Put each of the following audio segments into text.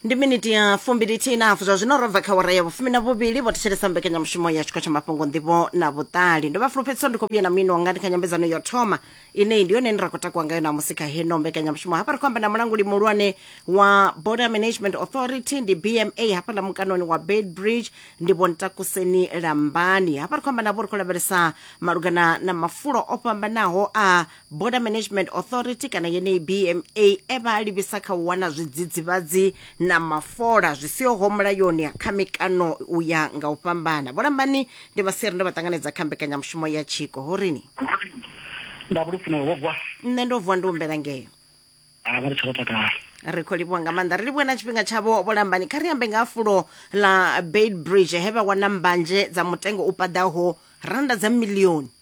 ndi miniti ya fumbilithi inafu zwa zwino robva kha wara ya vhufumi na vhuvhili vho thetshelesa mbekanyamushumo ya tshikho tsha mafhungo nḓivho na vhuṱali ndo vha fulufhedziso ndi khou vhuya na mino wanga ndi kha nyambedzano ya u thoma ine ndi yone ine ra khou takuwa ngayo namusi kha heno mbekanyamushumo hafha ri khou amba na mulanguli muhulwane wa border management authority ndi bma hafha na mukanoni wa bedbridge ndi vho ntakuseni lambani hafha ri khou amba navho ri khou lavhelesa malugana na mafulo o fhambanaho a border management authority kana yeneyi bma e vha a livhisa kha u wana zwidzidzivhadzi na mafola zwi sihoho mulayoni kha mikano u ya nga u fhambana vholambani ndi vhasiri ndo vha ṱanganedza kha mbekanyamushumo ya tshiko ho rini nda vhulufuna wo bwa nṋe ndo vuwa ndi humbela ngeo a vha ri tsho takala ri khou livhuwa nga maanḓa ri livhuwe na tshifhinga tshavho vholambani kha ri ambe nga ha fulo ḽa beitbridge he vha wana mbanzhe dza mutengo u paḓaho randa dza milioni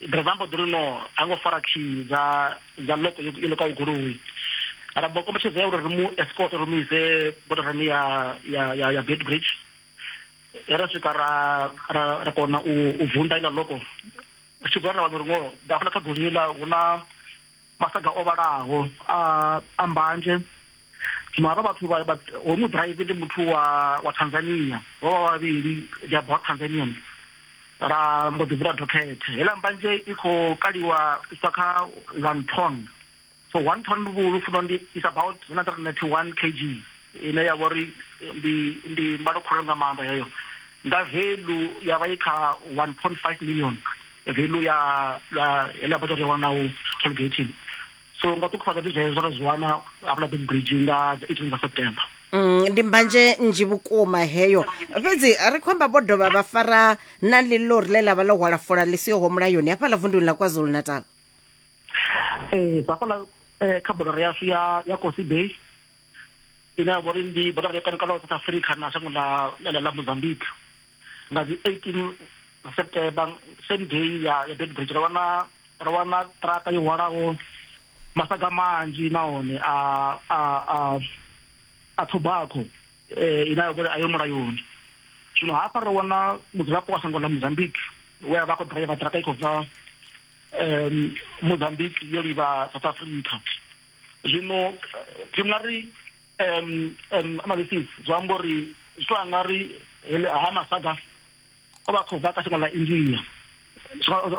driver mbo ḓi ri no ha ngo fara key dza dza loko yo loka goloi ra bo kombetshedza uri ri mu escort ri mu ise bodarani ya ya ya ya Beitbridge ra swika ra ra ra kona u u vunḓa ila loko tshi gwa ra wana uri ngo dafula kha goloi la huna masaga o vhalaho a a mbanje zwino havha vhathu vha hoyu muḓiraivi ndi muthu wa wa tanzania vho vha vhavhili they are both tanzanians ra mbo ḓi vula dokhethe heiḽa mbanje i khou kaliwa iswa kha one ton so one ton vhulu funo ndi is about 191 kg ine ya vha uri ndi ndi mbalo khulwane nga maanḓa heyo nga velu ya vha i kha 1.5 million velu ya heḽa bada ri wana u tollgating so nga ṱukhufhadza ndi zwezwo ra zwi wana hafhaḽa big bridge nga 18 nga september mm, ndi mbanje nzhi vhukuma heyo fhedzi ri khou amba vho dovha vha fara na ḽilori ḽe ḽa vha ḽo hwala fola ḽi sihoho mulayoni hafhaḽa vunduni ḽa kwazulu natal ee hafhaḽa eh, kha bodo yashu ya ya kosi bay ine ya vha uri ndi bodo ya kanukano south africa na shango ḽa ḽa mozambique nga dzi 18 september same day ya ya dead bridge ro wana ro wana traka yo hwalaho masaga manzhi nahone a a a a tobacco eh ina ya vha uri a yo mulayoni zwino hafha ro wana mudzulapo wa shango ḽa mozambique we a vha khou driver traka i khou bva um mozambique yo livha south africa zwino zwi nga ri um um analysis zwi amba uri zwi to anga ri ha masaga o vha khou bva ka shango ḽa india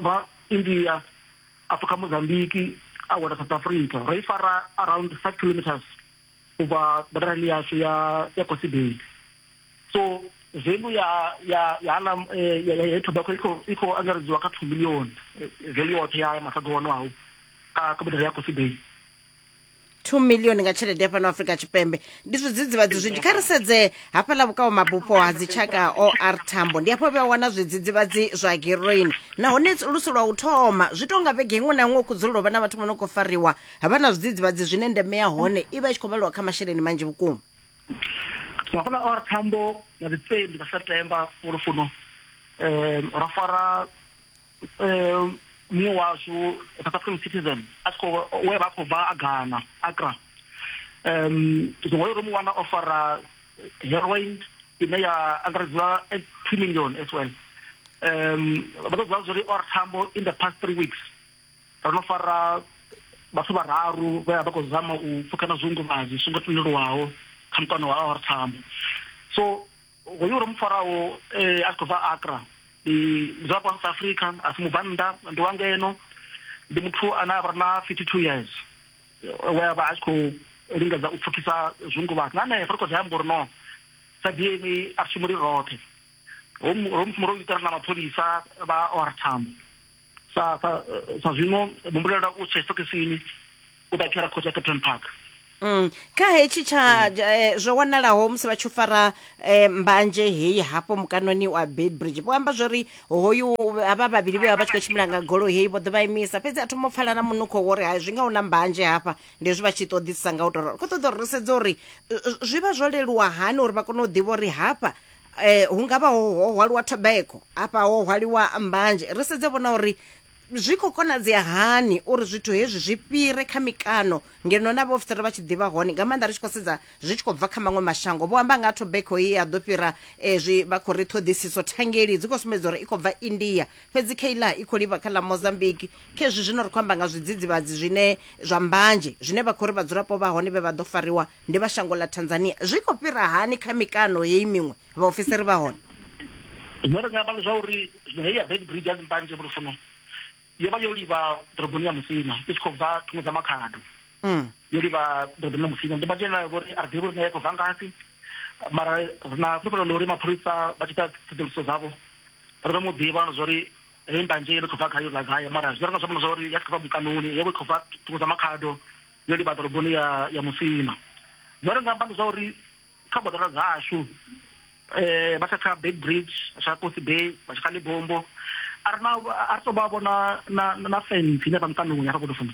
ba india a pfuka mozambique a wela south africa ra i fara around five kilometers u bva bodarani yashu ya ya kosibeni so value ya ya ya na eh, ya ya tobacco iko iko angaredziwa ka 2 million eh, value yoṱhe ya masaga ono awu ka ka bodere ya coffee bay 2 million nga tshelede ya fhano afrika tshipembe ndi zwidzidzivhadzi zwinzhi kha ri sedze hafhaḽa vhukao mabupo ha dzitshaka or tambo ndi hafho vhea wana zwidzidzivhadzi zwa heroin nahone lusi lwa u thoma zwi tou nga vhege iṅwe na iṅwe khu dzulela u vha na vhathu vho no khou fariwa ha vha na zwidzidzivhadzi zwine ndeme ya hone i vha i tshi khou vhaliwa kha masheleni manzhi vhukuma Ba gola or thambo na di tseli ba September gore fono eh ra fara eh mongwe wa so South African citizen a tshiko we ba khou bva a Ghana Accra um zwiṅwe yo ri mu wana o fara heroin ine ya angaredziwa at 2 million as well um vha ṱoḓa zwo ri or thambo in the past 3 weeks ro no fara vhathu vhararu vhe vha khou zama u pfukana zwiunguvhadzo zwi songo tendelwaho kha mukano wa or thambo so hoyu ro mu faraho eh, a khou bva akra ndi zwa kwa south africa a si mubvannḓa ndi wa ngeno ndi muthu ane a vha na 52 years we a vha a tshi khou lingedza u pfukisa zwiunguvhadzo na nṋe ri khou zwi amba uri no sa dna a shumi ri roṱhe ro mu ro mu ro itela na mapholisa vha or thambo sa sa sa zwino humbulela u tshe stokisini u ta khera khotsa captain park Mm. kha hetshi tsha mm. eh, zwo wanalaho musi vha tshi fara eh, mbanje heyi hafho mukanoni wa bedbridge vho amba zwori hoyu havha vhavhili vhe vha vha tshi khou tshimbila nga golo heyi vho ḓo vha imisa fhedzi a thoma u pfala na munukho wori ha zwi nga una mbanje hafha ndi zwi vha tshi ṱoḓisisa nga u tou rolo khou ṱoḓa uri ri sedze uri eh, zwi vha zwo leluwa hani uri vha kone u ḓivha uri hafha eh hu ngavha ho hwaliwa tobacco afha ho hwaliwa mbanzhe ri sedze vhona uri zwi khou konadzea hani uri zwithu hezwi zwi fhire kha mikano ngeno na vhaofisiri vha tshi ḓivha hone nga maanḓa ri tshi khou sedza zwi tshi khou bva kha maṅwe mashango vho amba nga ha tobacco ye ya ḓo fhira eh, zwi vha khou ri ṱhoḓisiso thangeli dzi khou sumbedza uri i khou bva india fhedzi kha iḽa i khou livha kha ḽa mozambique kha hezwi zwino ri khou amba nga zwidzidzivhadzi zwine zwa mbanzhe zwine vha khou ri vhadzulapo vha hone vhe vha ḓo fariwa Ndi vha shango ḽa Tanzania. Zwi khou fhira hani kha mikano heyi miṅwe vhaofisiri vha hone? Zwine ra nga amba ndi zwa uri zwino heyi ya Beitbridge ya Zimpanje vho tou funa yo vha yo livha ḓoroboni ya Musina i tshi khou bva thungo dza Makhado yo livha ḓoroboni ya Musina. Ndimpanje yeneyo vho ri a ri ḓivhi uri nayo i khou bva ngafhi mara ri na fhulufhelo ḽa uri mapholisa vha tshi ita ṱhoḓuluso dzavho ri ḓo mu ḓivha na zwa uri heyi mbanje yo no khou bva gai yo bva gai mara zwine ra nga zwi amba ndi zwa uri ya tshi khou bva mukanoni yo vha i khou bva thungo dza Makhado. yo livha ḓoroboni ya ya musina zwo ri nga amba ndi zwa uri kha boḓelo dzashu eh vha kha big bridge sa kosi bay vha kha libombo a rina a ri to vha vhona na na fence ine vha mutandoni ya fhakudo funa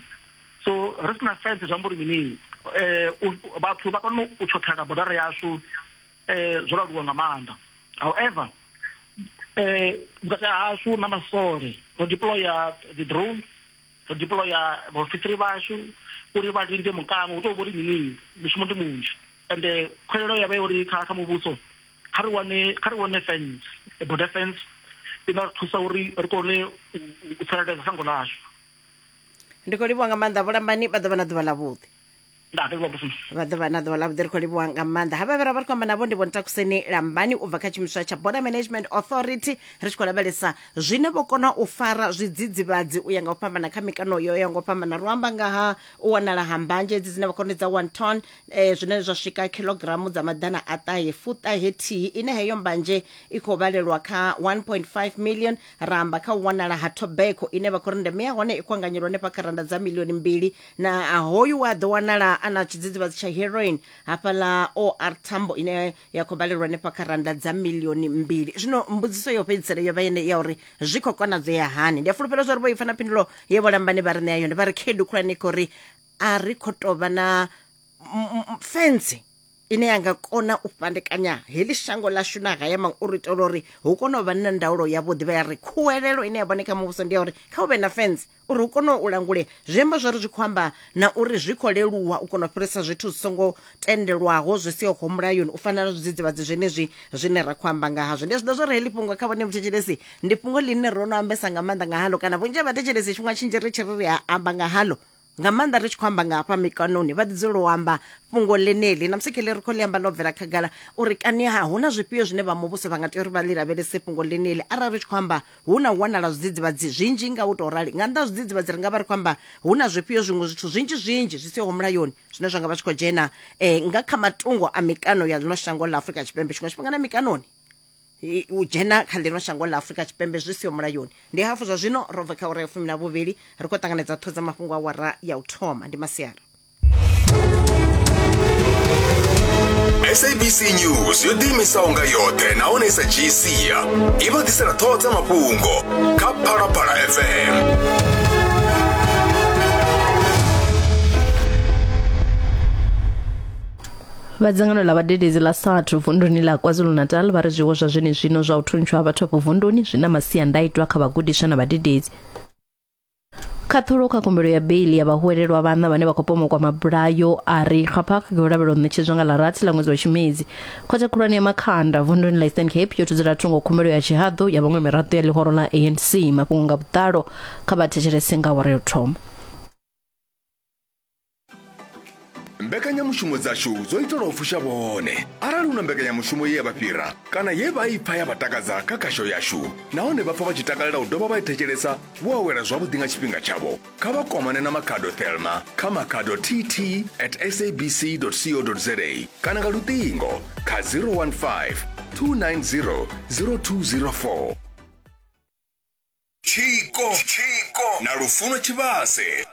so ri sina fence zwa mbori mini eh vhathu vha kona u tshothela bodara yashu eh zwo laluwa nga maanḓa however eh vhukati hashu na masole ro deployer the drone ro deploya vhaofisiri vhashu uri vha linde mukano u tou vho ri mini mushumo ndi munzhi ende khwelelo ya vha ya uri kha kha muvhuso kha ri wane kha ri wane fence border fence i nga ri thusa uri ri kone u tsireledza shango ḽashu ndi khou livhuwa nga maanḓa vhulambani vha ḓo vha na ḓuvha ḽavhuḓi nda ri lobusuma vha ḓo vha na ḓuvha ḽavhuḓi ri khou livhuwa nga maanḓa havha vhe ra vha ri khou amba navho ndi vhontakuseni lambani u bva kha tshiimiswa tsha border management authority ri tshi khou lavhelesa zwine vho kona u fara zwidzidzivhadzi u ya nga u fhambana kha mikano yo ya nga u fhambana ro amba nga ha u wanala ha mbanzhe edzi dzine vha khou ri ndi dza one ton eh, zwine zwa swika khilogiramu dza maḓana a ṱahe fuṱahe thihi ine heyo mbanzhe i khou vhalelwa kha 1.5 million ra amba kha u wanala ha tobacco ine vha khou ri ndeme ya hone i khou anganyelwa hanefha kha randa dza milioni mbili na a, hoyu wa ḓo wanala a na tshidzidzivhadzi tsha heroin hafhaḽa or thambo ine ya khou balelwa hanefha kha randa dza milioni mbili zwino mbudziso yo fhedzisela yo vha yene ya uri zwi khou konadzea hani ndi a fulufhela zwa uri vho ipfa na phindulo ye vho lambani vha ri ṋea yone vha ri khaedu khulwane kho ri a ri khou tou vha na m- m- m- fence ine ya nga kona u fhandekanya heḽi shango ḽashu na haya maṅwe uri itela uri hu kone u vha na ndaulo yavhuḓi vha ya ri khuwelelo ine ya vhone kha muvhuso ndi ya uri kha u vhe na fence uri u kone u langule zwi amba zwori zwi khou amba na uri zwi khou leluwa u kona u fhirisa zwithu zwi songo tendelwaho zwi sihoho mulayoni u fana na zwidzidzivhadzi zwenezwi zwine ra khou amba nga hazwo ndi zwi ḓa zwori heḽi fhungo kha vhone muthetshelesi ndi fhungo ḽine ro no ambesa nga maanḓa nga halo kana vhunzhi ha vhathetshelesi tshifhinga tshinzhi ri tshi ri ri a amba nga halo nga maanḓa ri tshi khou amba nga hafha mikanoni vha ḓi dzulela u amba fhungo ḽeneḽi na musi kheḽi ri khou ḽi amba ḽo bvela khagala uri kani ha hu na zwifhio zwine vha muvhuso vha nga tea uri vha ḽi lavhelese fhungo ḽeneḽi arali ri tshi khou amba hu na u wanala zwidzidzivhadzi zwinzhi nga u tou rali nga nnḓa zwidzidzivhadzi ri nga vha ri khou amba hu na zwifhio zwiṅwe zwithu zwinzhi zwinzhi zwi siho mulayoni zwine zwa nga vha zwi khou dzhena um nga kha matungo a mikano ya ḽino shango ḽa afurika tshipembe tshiṅwe tshifhinga na mikanoni u dzhena kha ḽino shango ḽa afurika tshipembe zwi siho mulayoni ndi hafhu zwa zwino ro bva kha ura ya fumi na vhuvhili ri khou ṱanganedza ṱhodza mafhungo a wara ya u thoma ndi masiari sabc news yo ḓiimisaho nga yoṱhe nahone i sa dzhii sia i vha ḓisela ṱhoho dza mafhungo kha phalaphala fm vha dzangano ḽa vhadededzi ḽa sathu vunduni ḽa kwazulu-natal vha ri zwiwo zwa zwenezwino zwa u thuntshiwa ha vhathu afho vunduni zwi na masiandaitwa kha vhagudiswa na vhadededzi khaṱhulo kha khumbelo ya beili ya vhahwelelwa vhanna vhane vha khou pomokwa mabulayo a ri xapha kha khou lavhelwa ṋetshedzwa nga ḽa rathi ḽa ṅwedzi wa tshimedzi khothe khulwane ya makhanda vunduni la eastern cape yo thudzela thungo khumbelo ya tshihaḓu ya vhaṅwe miraḓo ya ḽihoro ḽa anc mafhungo nga vhuḓalo kha vha thetshelese nga awara yo thoma mbekanyamushumo dzashu dzo itelwa u fusha vhone arali hu na mbekanyamushumo ye ya vha fhira kana ye vha i pfa ya vha takadza kha khasho yashu nahone vha pfa vha tshi takalela u dovha vha i thetshelesa vho awela zwavhuḓi nga tshifhinga tshavho kha vha kwamane na makhado thelma kha makhado tt at sabc co za kana nga luṱingo kha 015 290 0204 tshiko na lufuno tshivhase